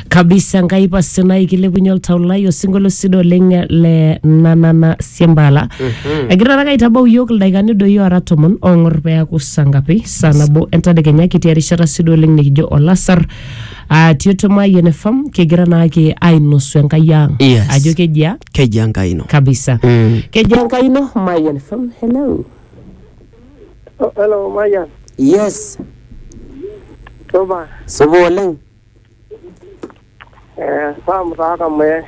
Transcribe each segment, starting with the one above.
kabisa nkai pasi nai kilepunye oltau lai osinkolio sidai oleng le nanana siembala egira taake aitabau iyiok ildaikani doi ora tomon ong'or peaku saa ngapi saa nabo entadekenya kitii erishata sidai oleng nikijo olasar Ah, tioto mayian fam kigira naake ainosu enkai ang Yes. ajo kejia keji enkai ino kabisa Mm. kejia enkai ino mayian fam hello Oh, hello, Mayan. Yes, Supa. supa oleng. Eh, Sam taa Kamuye.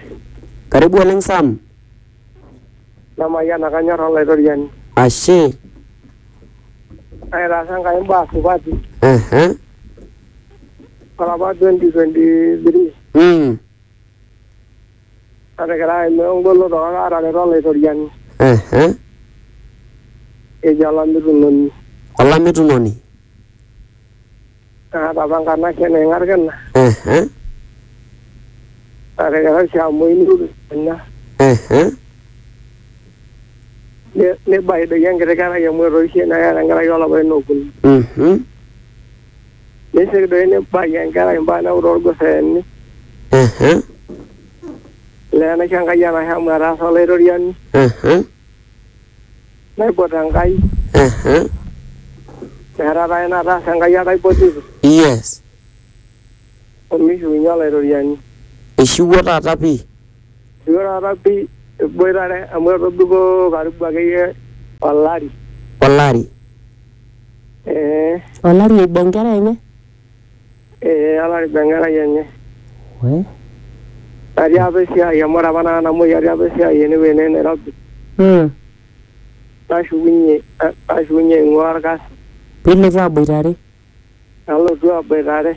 Karibu oleng Sam. Namayiana kanyor olaitoriani. Ashe. Aitaasa Enkai imbaa supati. Aha. Olapa 2023. Mm. Natekerai eme engoloto kake aatareto Olaitoriani. Ehe. Ejo olamitunoni. Olamitunoni. Naatapa nkanashe naing'a lkina. Ehe. Natekerai sii amu eini lukunguni. Ehe. Neibaidoi enkiti kerai amu etoishe neeta enkerai o lapaitin okuni. Mhm. Neisik doi nibaki enkerai mbaa neeku toolguseeni. Mhm. Olee enaisho Enkai enashe amu etaasa Olaitoriani. Mhm. Naipot Enkai. Mhm. Metaa taa ina nataasa Enkai ake aipotito. Yes. Omishiunye Olaitoriani. Eishiwuo taata pii. Eishiwuo taata pii eboitare amu etobiko karibu akeyie olari. Olari. ee olari oiba enkerai enye ee olari oiba enkerai enye we natii apa esiai amu ore apa nanu namuoi atii apa esiai enewueji naa enairobi mm. nashukunye nashukunye aing'ua orkasi piilotu aboitare Nalotu aboitare.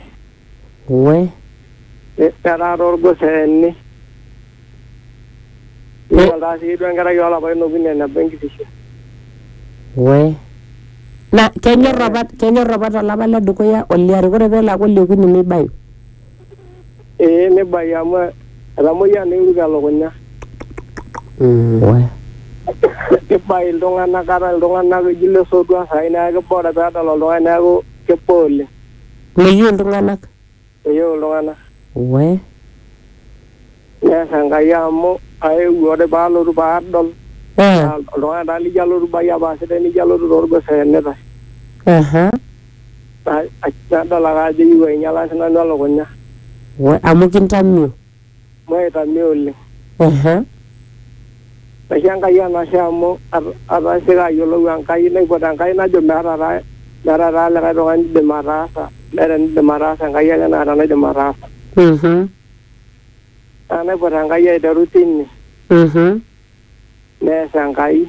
We. Netaara olgoseeni. Nidol taa sii duo enkerai oolapaitin okuni eneba enkitisho. We. Na kenyor apa, kenyor apa tolapa le dukuya oliare, ore pelo aaku oliokuni neibayu. ee nibaiki amu etamoyia naa eruko elukunya kibaiki iltung'anak kata iltung'anak eji ile sotua saai neeku kiba ore peedol oltung'ani neeku kiba oleng meyieu iltung'anak meyieu iltung'anak we nees Enkai amu aewuo ore paalotu paadol Eh, naa oltung'ani taa lijo alotu baiyia paa sidai nijo alotu torgos eenitae aha Nadol ake ajo eyieu ainyalaki nanu elukunya. Amu kintamio? Amu aitamio oleng. Naisho Enkai enashe amu atasioki ayiolou Enkai naipot Enkai najo meeta taa meeta taa likae tung'ani oidim ataasa meeta enidim ataasa Enkai ake naata enaidim ataasa. Naa naipot Enkai aiteru tine. Nees Enkai.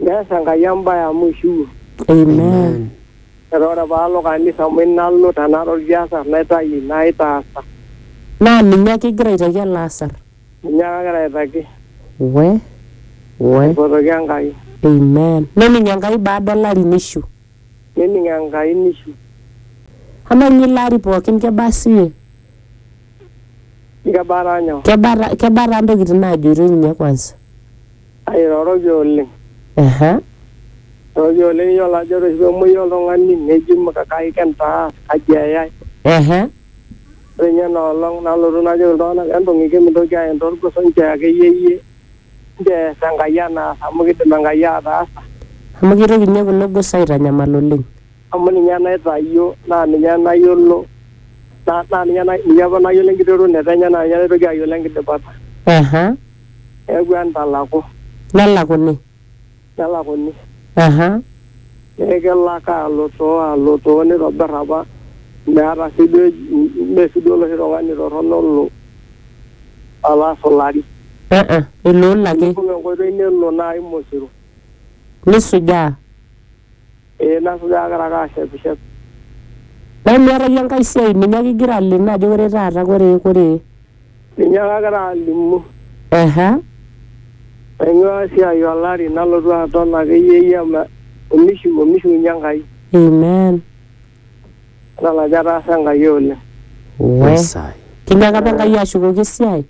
Neas Enkai embae amu eishiwuo. Amen. Metaa ore paa alo kanisa amu inalo tenaa tolkiasar naitayu ina aitaasa. Naa ninye ake igira aitaki ele asar. Ninye ake agira aitaki. We. We. Aipotoki Enkai. Amen. Nening Enkai baada o lari neishiu. Nening Enkai neishiu. Amaa ninye ilo ari pookin kebaa siiyie? Kebaa taa nyoo? Kebaa taa ntokitin naajoitoi ninye kwansa? Airoroki oleng. Ehe. Airoroki oleng iyiolo ajo ore oshi pemuoi oltung'ani neji kai kintaas, kaji eyai. Ehe. Ore inye ina olong nalotu najoki iltung'anak entung'iki mintoki aen torgos enchoo akeyie iyie enchoo ees Enkai enaas amu kidim Enkai ataasa. Amu kitoki inye kulo gos aitanyamal oleng. Amu ninye naitayio naa ninye nayiolo naa ninye apa nayiolo enkiterunoto enye naa ninye naitoki ayiolo enkidipata. Ehe. Eewuo entalaku. Nelakuni. Nelakuni. Aha. Neeku kelo ake alutoo alutoo nitobir apa meeta sii duo mee sii duo oloshi tung'ani torrono olo alo asulari. Uh-uh. Iloolo ake. Nibung enkoitoi nelo naai Mosiro. Nisujaa. Ee nasujaa agira ake ashepishep. Nemeeta iyie enkae siai ninye ake igira aleno ajo ore taata kore kore. Ninye ake agira alimu. Eha. Aing'uaa esiai olari nalotu aton akeyie iyie ama omishu omishiunye Enkai. Amen. Idol ajo etaasa Enkai oleng. Wee. Kinyaaka apa Enkai ashukoki esiai?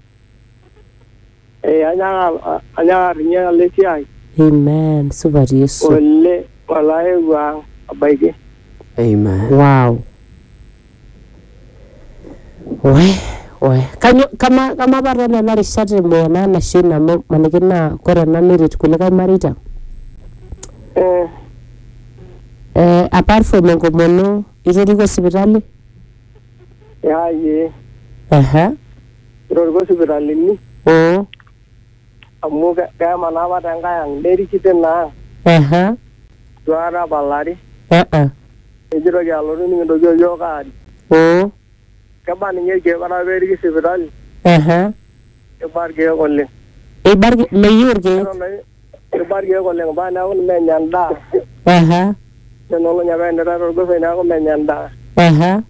Eh, anyaaka a- anyaaka ninye alo esiai Amen. Supat Yesu. ole olaewuo ang abaiki. Amen. Wow. We, we. Kanyo, kama, kama pata nena rishat emuya naa nasho ina amu maniki naa kore ena neret kulikae mareita. Eh, Eh, apart from enkomono, itoriko sipitali? ya ye. Aha. itoriko sipitalini mm, amu ke- kemanaa apa te nkae ang neriki tina ang aha, itu aikata apa lari aa, nikitoki alotu nikintoki oyiok aari mm, keba ninye irkeek ore apa periki sipitali aha. keba irkeek oleng Eibarki meyieu irkeek. Eton ake- Irriba irkeek oleng mpaka neeku ninye enya endaa. Aha. Tenolony apa enira torgosoi neeku menya endaa. Aha.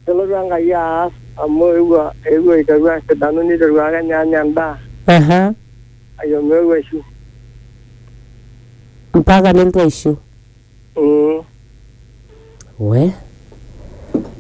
Nelotu Enkai aas amu eewuo eewuo aiteru asidanu niteru ake ninye anya endaa. Aha. Kake omeeu aishu. Mpaka nelotu aishu. Mm. We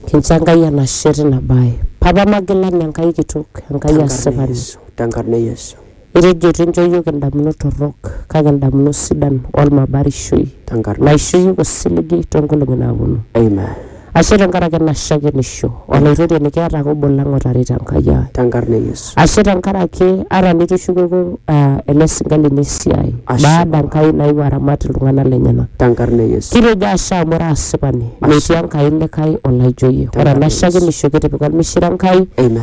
kincho Enkai enashe tina bae. Papa Magilani Enkai kitok, Enkai Tenkarna asipani. Yesu, tenkarna Yesu, Itejo eitu incho iyiook indamunot torrok kake indamunot sidan olmabarishoi tenkarna naisho iyiook osiligi toonkolong'i naaponu. Amen. Ashe tenkaraki ena shakenisho Olaitoriani keeta ake obo lang otarita Enkai ai. Tenkarna e Yesu. Ashe tenkaraki ata nitushukuku aa ele sinka lino esiai Ashe. baada Enkai naewuo aramat iltung'ana lenyena. Tenkarna e Yesu. Kitejo ashe amu ira asipani metii Enkai likae olaijo iyie. Ore Tenkarna e ena Yesu. shakenisho kitipika olmishire Enkai. Amen.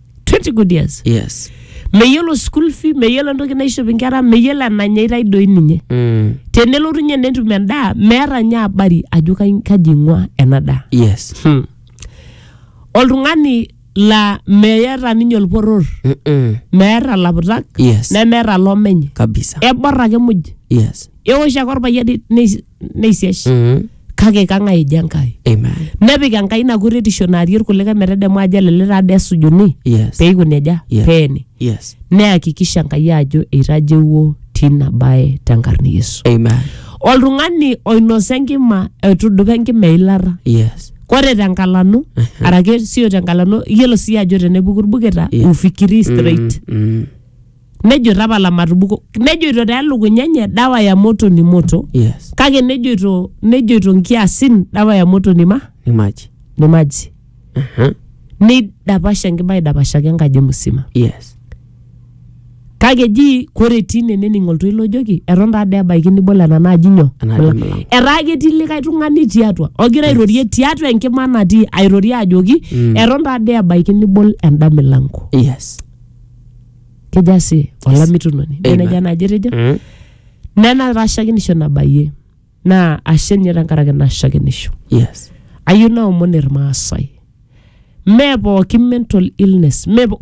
20 good years yes meyiolo school fee meyiolo entoki naishop inkera meyiolo enanyaitae doi ninye mm. tenelotu nye netum endaa meeta nye habari ajo kai- kaji ing'ua ena daa yes hmm. oltung'ani laa meeta ninye olporor Mm-mm. meeta laputak Yes. nemeeta lomenye kabisa ebor ake muj yes eosh ake orpayian ne- neisiash Mhm. kake kang'ae eji enkai Amen. nepik enkai ina kuretisho naarie irkulikae metedemu ajo elele taa dee esujuni Yes. peiko nejia Yeah. peeni Yes. neyakikisha enkai ajo eitajeuo tina bae tenkarna e yesu Amen. oltung'ani oinosa enkima etudupa enkima eilata Yes. kore tenkalanu arake sio tenkalanu iyiolo sii ajo tenepuku irbuketa Yeah. ufikiri straight Mm. nejo tapala matubuko nejoito taa elukunya enye dawa ya moto ni moto yes kake nejoito nejoito nkiasin dawa ya moto ni ma nimaji ni maji Aha. neidapasha enkima aidapashaki enkaji musima yes kake ji kore etii ine nening oltoilo ojoki eton taa dee ebaiki nibol ena naaji nyoo Ena aji Mula. mula. etaa ketii likae tung'ani tiatua ogira airorie tiatua enkima natii airorie ajoki eton taa dee ebaiki nibol enda milango yes kejo ashe olamitunoni Amen. neneja naaji etejo Mm. nena tashakinisho nabayie naa ashe ninye tenkaraki ina shakinisho yes ayieu naomon irmaasai mee pooki mental illness mee po-